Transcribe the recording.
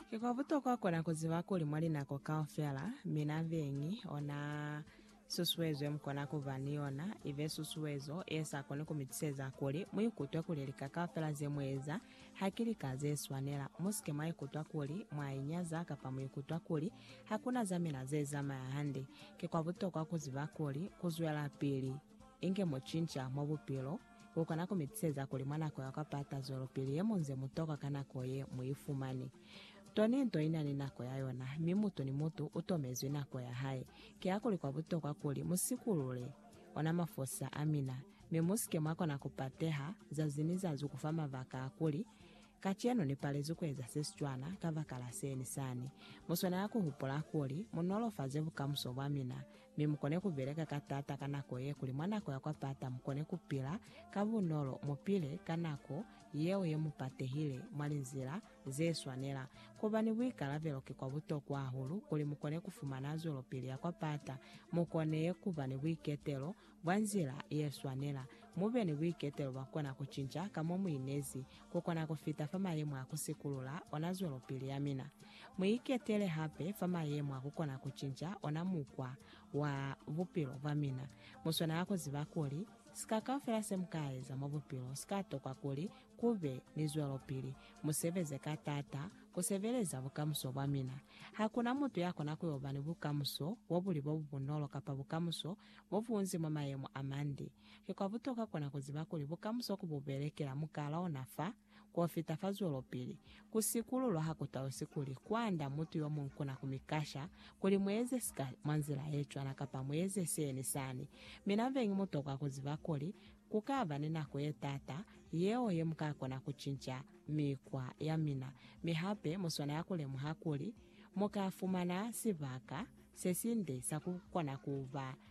Ki kwa butokwa kona ku ziba kuli mwa linako kaufela, mina beñi o na susuezo ye mu kona ku ba ni yona, i be susuezo ye sa koni ku mi tuseza kuli mu ikutwe kuli lika kaufela ze mu eza ha ki lika ze swanela. Mu si ke mwa ikutwa kuli mwa inyaza kapa mu ikutwa kuli ha ku na za mina ze zamaya hande. Ki kwa butokwa ku ziba kuli ku zwelapili inge mu cinca mwa bupilo, Ku kona ku mi tiseza kuli mwa nako ya kwa pata zwelopili ye mu nze mu tokwa ka nako ye mu i fumani. Toni nto i na ni nako ya yona, mi mutu ni mutu u tomezwi nako ya hae. Kihakuli kwa butokwa kuli mu sikulule ona mafosa a mina, mi mu si ke mwa kona ku pateha zazi ni zazi ku fa mabaka a kuli, Kacenu ni palezwi ku eza se si cwana kabakala se ni sani. Mu swanela ku hupula kuli, Mu nolofaze bukamuso bwa mina, mi mukone kubeleka ka taata ka nako ye kuli mwa nako ya kwa pata mukone kupila ka bunolo, mupile ka nako yeo ye mupatehile mwa linzila ze swanela. Kuba ni buikalabelo ki kwa butokwa hahulu kuli mukone kufumana zwelopili ya kwa pata, mukone kuba ni buiketelo bwa nzila ye swanela, mube ni buiketelo bwa kona kucinca ka mo muinezi Ku kona ku fita fa mayemo a ku sikulula ona zwelopili ya mina. Mu iketele hape fa mayemo a ku kona ku cinca ona mukwa wa bupilo bwa mina. Mu swanela ku ziba kuli, sika kaufela se mu ka eza mwa bupilo si ka tokwa kuli ku be ni zwelopili. Mu sebeze ka taata ku sebeleza bukamuso bwa mina. Ha ku na mutu ya kona ku yo ba ni bukamuso bo bu li bo bu bunolo kapa bukamuso bo bunzi mwa mayemo a mande. Ki kwa butoka kona ku ziba kuli bukamuso ku bu belekela mukala ona fa, k'o fita fa zwelopili. Ku sikululwa ha ku tausi kuli kwanda mutu yo muñwi kona ku mi kasha kuli mu eze sika mwa nzila ye cwana kapa mu eze se ni sani. Mi na beñi mu tokwa ku ziba kuli ku ka ba ni nako ye taata yeo ye mu ka kona ku cinca mikwa ya mina, mi hape mu swanela ku lemuha kuli mu ka fumana sibaka se sinde sa ku kona ku ba